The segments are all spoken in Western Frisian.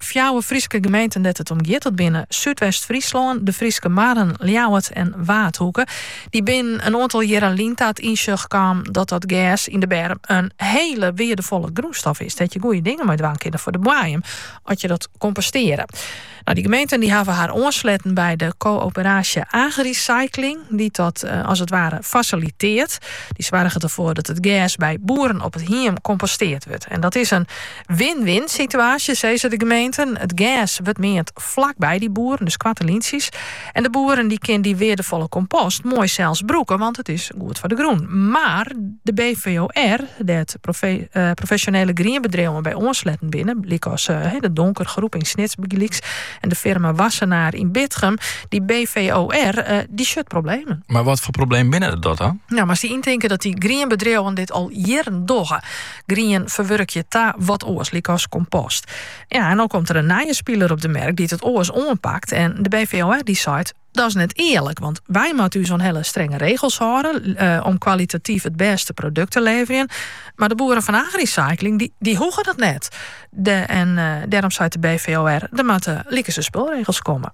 Fjouwer Fryske gemeenten dêr't it om giet, dat binne Súdwest-Fryslân, de Fryske Marren, Ljouwert en Waadhoeke. Dy binne in oantal jierren lyn ta it ynsjoch kaam dat dat gers yn de berm in hiele weardefolle grûnstof is, dêr't je goeie dingen mei dwaan kinne foar de boaiem, as je dat kompostearre. Nou, dy gemeenten dy hawwe har oansletten by de koöperaasje Agricycling, dy't dat eh, as it ware fasilitearret. Dy soarget derfoar dat it gers by boeren op it hiem kompostearre wurdt. En dat is in Win-win situaasje, sizze de gemeenten. It gers wurdt meand flak by dy boeren, dus koarte lyntsjes. En de boeren dy kin dy weardefolle kompost moai sels brûke, want it is goed foar de grûn. Mar de BVOR, dêr't profesjonele grienbedriuwen by oansletten binne, lykas de Donker Groep yn Snits bygelyks en de firma Wassenaar yn Bitgum, dy BVOR dy sjocht problemen. Mar watfoar problemen binne dat dan? Nou, moatst dy yntinke dat dy grienbedriuwen dit al jierren dogge. grien ferwurkje ta wat oars, lykas kompost. Ja, en no komt der in nije spiler op de merk dy't it oars oanpakt en de BVOR dy seit dat is net earlik, want wy moatte ús oan hele strenge regels hâlde eh, om kwalitatyf it bêste produkt te leverjen. Mar de boeren fan Agricycling dy, dy hoege dat net. De, en eh, dêrom seit de BVOR, der moatte likese spulregels komme.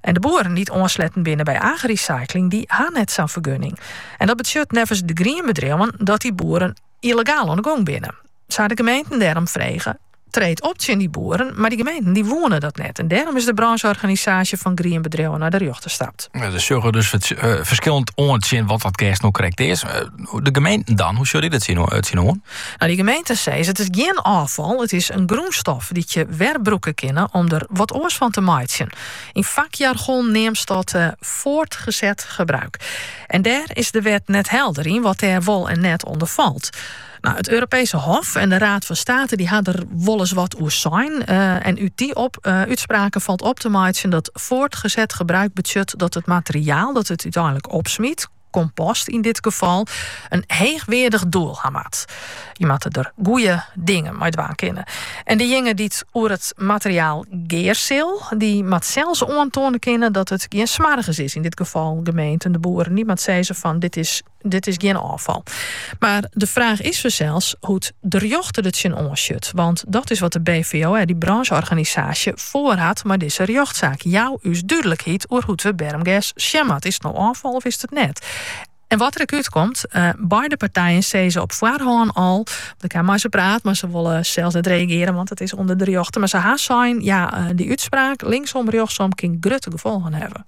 En de boeren dy't oansletten binne by Agricycling, dy ha net sa'n fergunning. En dat betsjut neffens de grienbedriuwen dat dy boeren yllegaal oan de gong binne. Se ha de gemeenten dêrom frege, treed op tsjin dy boeren, mar dy gemeenten dy woene dat net. En dêrom is de brânsjeorganisaasje fan grienbedriuwen nei de rjochter stapt. Ja, se sjogge dus ferskillend oan tsjin wat dat gers no krekt is. De gemeenten dan, hoe sjogge dy dêr tsjin oan? Nou, dy gemeenten sizze, it is gjin ôffal, it is in grûnstof dy't je werbrûke kinne om der wat oars fan te meitsjen. Yn fakjargon neamst dat voortgezet gebruik. En dêr is de wet net helder yn wat dêr wol en net ûnder falt. Nou, it Europese Hof en de Raad fan State dy ha der wolris wat oer sein. En út dy op, útspraken falt op te meitsjen dat voortgezet gebruik betsjut dat it materiaal dat it úteinlik opsmyt, kompost yn dit gefal, in heechweardich doel ha moat. Je moatte der goeie dingen mei dwaan kinne. En dejinge dy't oer it materiaal gear sil, dy moat sels oantoane kinne dat it gjin smoargens is, yn dit gefal gemeenten, de boeren. Dy moat sizze fan dit is dit is gjin ôffal. Mar de fraach is fansels hoe't de rjochter der tsjin oansjut. Want dat is wat de BVOR, dy brânsjeorganisaasje, foarhat mei dizze rjochtsaak. Jou ús dúdlikheid oer hoe't we bermgers sjen moatte. Is it no ôffal of is it it net? En wat der ek útkomt, beide partijen sizze op foarhân al, ik ha mei se praat, mar se wolle sels net reagearjen, want it is ûnder de rjochter. Mar se ha sein, ja, dy útspraak, linksom, rjochtsom, kin grutte gefolgen hawwe.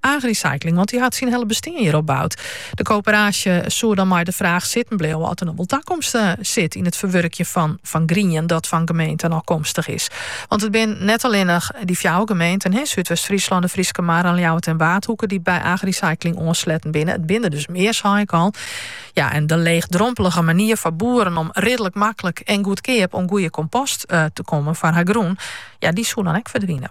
Agricycling, want dy hat syn hiele bestean hjirop boud. De koöperaasje soe dan mei de fraach sitten bleaue oft der noch wol takomst sit yn it ferwurkjen fan fan grien dat fan gemeenten ôfkomstich is. Want it binne net allinnich dy fjouwer gemeenten, Súdwest-Fryslân, de Fryske Marren, Ljouwert en Waadhoeke, dy't by agricycling oansletten binne. It binne der dus mear, sei ik al. Ja, en de leechdrompelige manier foar boeren om ridlik maklik en goedkeap oan goede kompost te kommen foar har grûn, ja, dy soe dan ek ferdwine.